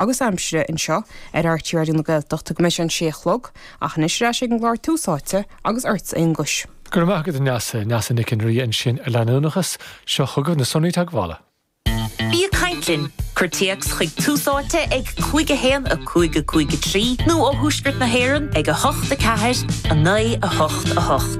agus aimsire anseo ar RTÉ Raidió na Gaeltachta go mbeidh sé an sé a chlog, ach anois ar ais ag an gclár Tús Áite agus ort, a Aonghuis. Go raibh maith agat, a Neasa. Neasa Nic an Rí ansin ar leanúnachas. Seo chugaibh na sonraí teagmhála. Bí ag caint linn! Cuir téacs chuig Tús Áite ag 5 1 5 5 3 nó ó thuaisceart na hÉireann ag 8 4 9 8 8.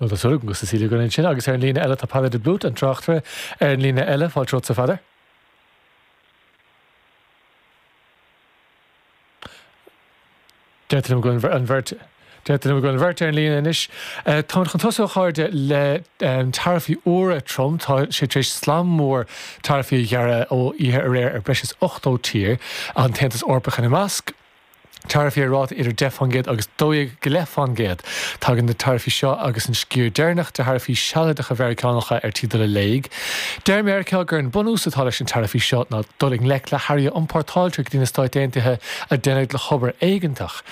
Now, tá súil agam go bhfuil Cecilia Gavigan ansin agus ar an líne eile tá Peadar de Blúit, an tráchtaire, ar an líne eile. Fáilte romhat, a Pheadair. Deirtear liom go bhfuil an bheirt. Deirtear liom go bhfuil an bheirt ar an líne anois. Táimid chun tosú, a chairde, le taraifí úra Trump. Tá sé tar éis slám mór taraifí a ghearradh ó oíche aréir ar breis is 80 tír, an tAontas Eorpach ina measc. Taraifí ar ráta idir 10 fán gcéad agus 12 go leith fán gcéad. Tagann na taraifí seo agus an sciar deireanach de tharaifí sealadacha Mheiriceánacha ar tí dul i léig. Deir Meiriceá gurb é an bunús atá leis na taraifí seo ná dul i ngleic le hearraí a iompórtáiltear go dtí na Stáit Aontaithe a deineadh le hobair éigeantach.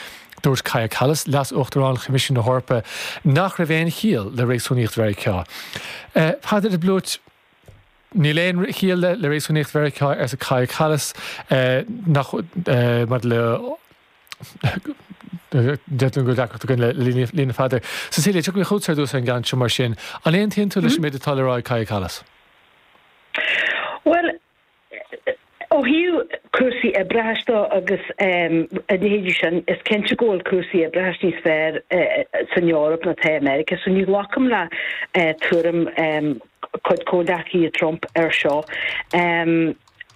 Dúirt Kaja Kallas, Leas-Uachtarán Choimisiún na hEorpa, nach raibh aon chiall le réasúnaíocht Mheiriceá. Peadar de Blúit. Níl aon chiall le réasúnaíocht Mheiriceá, arsa Kaja Kallas, nach maidir le deirtear liom go bhfuil deacracht againn le líne Pheadair. Cecilia, tiocfaidh mé chugat ar dtús ar an gceann seo mar sin. An aontaíonn tú leis an méid atá le rá ag Kaja Kallas? Bhuel, Ó thaobh cúrsaí oibreachais dó agus a leithéidí sin, is cinnte go bhfuil cúrsaí oibreachais níos fearr san Eoraip ná atá i Meiriceá, so ní ghlacfainn le tuairim chuid comhghleacaithe Trump air seo.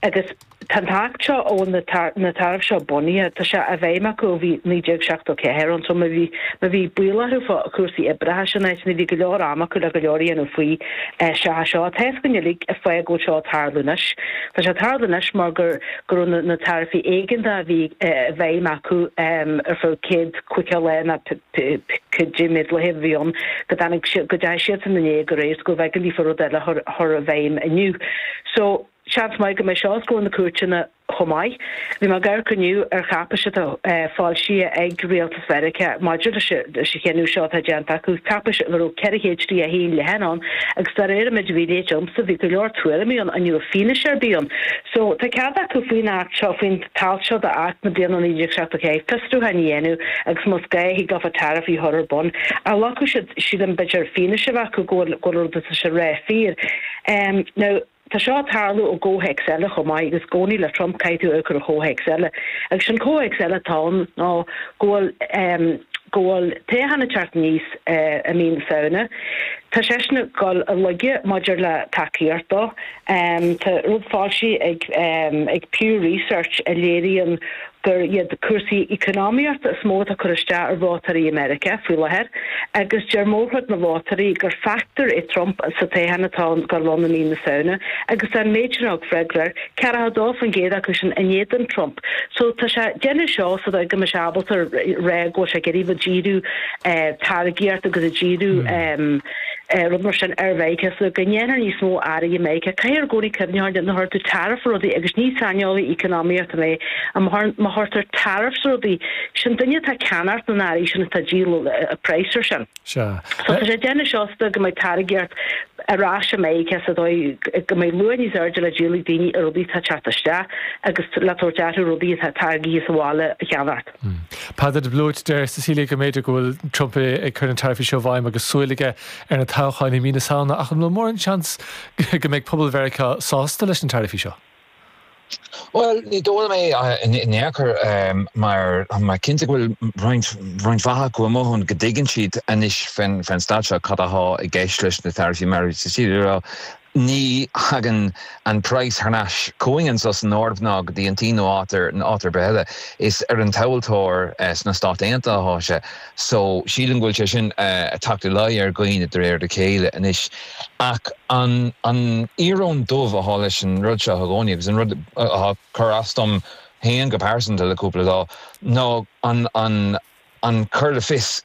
Agus tá an tAcht seo a bhfuil na taraif seo bunaithe, tá sé i bhfeidhm acu ó bhí 1974 ann, so má bhí buaireamh orthu fá chúrsaí oibreachais in áiteacha, bhí go leor ama acu le go leor a dhéanamh faoi. Is ea, seo tá a fhios againn uilig, an fáth go bhfuil seo ag tarlú anois. Tá sé ag tarlú anois mar gur go raibh na na taraifí éigeantacha a bhí i bhfeidhm acu ar feadh 150 lá nó cibé méid laetha a bhí ann go dtáinig siad, go dteachaigh siadsan in éag aréir is gurbh éigean daofa rud eile a chur i bhfeidhm inniu. So, seans maith go mbeidh seo os comhair na cúirteanna Chomh maith, bhí mé ag amharc inniu ar cháipéis atá foilsithe ag Rialtas Mheiriceá maidir leis an chinneadh seo atá déanta acu, cáipéis a raibh 431 leathanach ann agus de réir an méid a bhí léite agamsa, bhí go leor tuairimí ann ach ní raibh fianaise ar bith ann. So, tá cead acu faoin Acht seo, faoin t-alt seo d'Acht na bliana 1974 fiosrúcháin a dhéanamh agus más gá, thig leofa taraifí a chur ar bun. Ach glacfaidh siad, siad an b'fhéidir, fianaise a bheith acu go bhfuil an rud atá siad a ráit fíor. Now, Tá seo ag tarlú i gcomhthéacs eile chomh maith, agus i gcónaí le Trump caithfidh tú a chur i gcomhthéacs eile, agus an comhthéacs eile atá ann ná go bhfuil, em, go bhfuil toghcháin ag teacht aníos i mí na Samhna, tá seisean ag dul i laige maidir le tacaíocht dó. Em, tá rud foilsithe ag, em, ag Pew Research a léiríonn gur iad cúrsaí eacnamaíochta is mó atá ag cur isteach ar vótóirí i Meiriceá faoi láthair agus deir mórchuid na vótóirí gur factor é Trump sa toghchán atá ann go luath i mí na Samhna agus tá an méid sin ag freagairt ar 42% acu sin in éadan Trump. So tá sé ag déanamh seo sa dóigh go mbeidh sé ábalta rá go bhfuil sé ag iarraidh díriú ar tháirgíocht agus ag díriú rud mar sin, ar bheigeása, go ndéanthar níos mó earraí i Meiriceá. Caithfear i gcónaí cuimhneamh air nuair a chuirtear taraif ar rudaí agus ní saineolaí eacnamaíochta mé ach má chuirtear tariffs ar rudaí, is an duine atá ag ceannacht na n-earraí sin atá ag díol an price ar sin. Sea. So tá sé ag déanamh seo sa dóigh go mbeidh táirgíocht ar ais i Meiriceá sa dóigh go mbeidh luach níos airde le díol ag daoine ar rudaí atá ag teacht isteach agus le tabhairt orthu rudaí atá táirgthe sa bhaile a cheannacht. Peadar de Blúit, Deir Cecilia go mb'fhéidir go bhfuil Trump ag cur na taraifí seo i bhfeidhm agus súil aige ar na toghcháin i mí na Samhna, ach an bhfuil mórán seans go mbeidh pobal Mheiriceá sásta leis na taraifí seo? Bhuel, ní dóigh liom é in aon chor mar tá mé cinnte go bhfuil roinnt mhaith acu amuigh ann go dtuigeann siad anois faoin stáitse seo cad atá i gceist leis na taraifí mar a deir Cecilia. ní thagann an praghas thar n-ais chugainn anso san Eoraip ná go dtí an tSín nó áit ar bith eile. Is ar an tomhaltóir sna Stáit Aontaithe atá sé so. Sílim go bhfuil sé sin ag teacht i leith ar dhaoine de réir a chéile anois. Ach an íoróin dhubh atá leis an rud seo i gcónaí, agus an rud atá ag cur as dom féin go pearsanta le cúpla lá, ná an cur le fios go